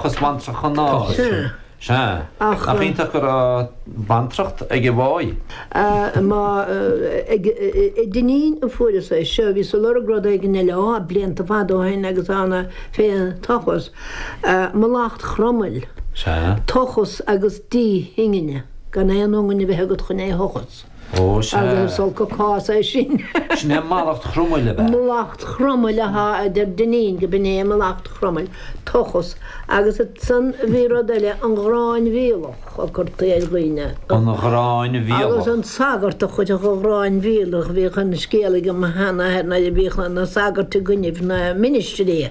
Cos bhaintreach an áir? Sea. Sea. Nach iontach go raibh bantracht ag an bhfáidh. Má ag Dinneen a fuaireas é seo, bhíos ag lorg rud éigin eile, á, blianta fada ó shin agus ann fén tochas, mallacht Chromail, Sea. tochas agus díth ingne, gan aon ionga a bheith agat chun é a thochas. Ó, sea. Agus is olc an cás é sin. Sin é mallacht Chromail, ab ea? Mallacht Chromail, a ha, a deir Dinneen, go b'in é mallacht Chromail, tochas. Agus ansan a bhí rud eile, an ghráin mhíolach a curtaí ar dhaoine. An ghráin mhíolach. Agus an sagart a chuirfeadh an ghráin mhíolach, bhíodh an scéal ag mo mháthair nuair a bhíodh na sagairt i gcoinnibh na ministrí,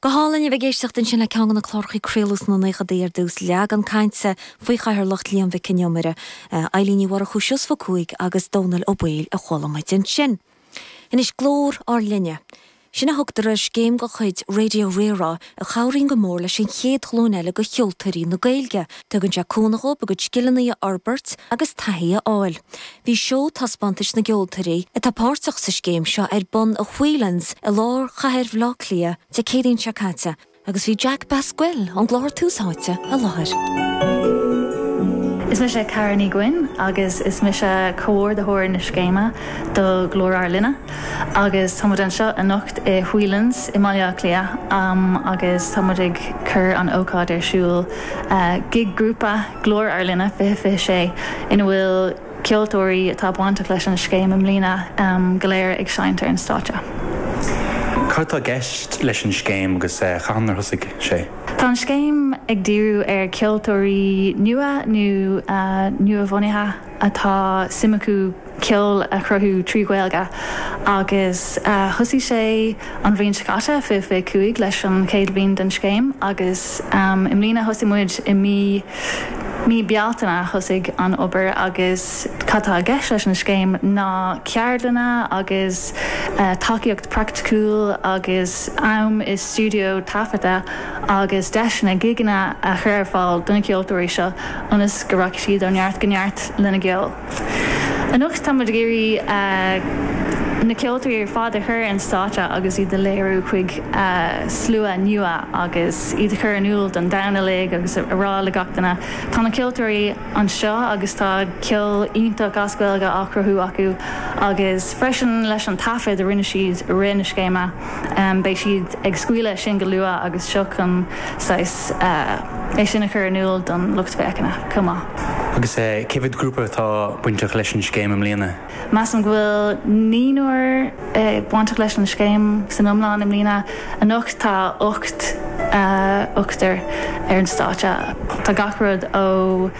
Go hálainn a bheith ag éisteacht ansin le ceann de na cláracha a craoladh sna naochadaí ar dtús, Leagan Cainte faoi chathaoirleacht Liam Mhic Con Iomaire, Eibhlín Ní Mhurchú, Seosamh Ó Cuaig agus Dónall Ó Baoill a chuala muid ansin. Anois Glór ár Linne. Sin a thugtar ar scéim de chuid Raidió Rí-Rá a chabhraíonn go mór leis an chéad ghlúin eile de cheoltóirí na Gaeilge. Tugann sé cúnamh dhóibh a gcuid scileanna a fhorbairt agus taithí a fháil. Bhí seó taispeántais na gceoltóirí atá páirteach sa scéim seo ar bun i Whelan's i lár chathair Bhaile Átha Cliath Dé Céadaoin seo caite agus bhí Jack Basquel ón gclár Tús Áite i láthair. Is mise Cara Ní Ghuin agus is mise comhordaitheoir na scéime do Ghlór Ár Linne agus tá muid anseo anocht i Whelan's i mBaile Átha Cliath agus tá muid ag cur an ócáid ar siúl, gig grúpa. Glór Ár Linne 2026, ina bhfuil ceoltóirí atá bainteach leis an scéim i mbliana go léir ag seinnt ar an stáitse. Cad tá i gceist leis an scéim agus cathain ar thosaigh sé? Tá an scéim ag díriú ar cheoltóirí nua nó nuabhunaithe atá suim acu. ceol a chruthú trí Ghaeilge agus thosaigh sé an bhliain seo caite, 2025, leis an chéad bhliain den scéim agus i mbliana thosaigh muid i mí mí Bealtaine thosaigh an obair agus cad tá i gceist leis an scéim ná ceardlanna agus tacaíocht praiticiúil agus am i stiúideo taifeadta agus deiseanna gigeanna a chur ar fáil do na ceoltóirí seo ionas go rachaidh siad ó neart go neart lena gceol. Anocht táimid ag iarraidh na ceoltóirí ar fad a chur ar an stáitse agus iad a léiriú chuig slua nua agus iad a chur in iúl don domhan uilig agus a rá le gach duine, tá na ceoltóirí anseo agus tá ceol iontach as Gaeilge á chruthú acu, agus freisin leis an taifead a rinne siad i rith na scéime. Beidh siad ag scaoileadh sin go luath agus seo chun saghas é sin a chur in iúl don lucht féachana chomh maith. Agus cé mhéad grúpa atá bainteach leis an scéim i mbliana? Measaim go bhfuil naonúr bainteach leis an scéim san iomlán i mbliana. Anocht tá ocht ochtar ar an stáitse. Tá gach rud ó.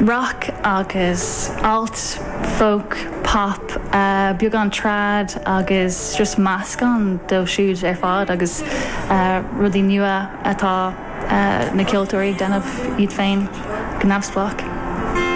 Roc agus alt, folk, pop, beagán trad agus just meascán díobh siúd ar fad agus rudaí nua atá na ceoltóirí ag déanamh iad féin go neamhspleách.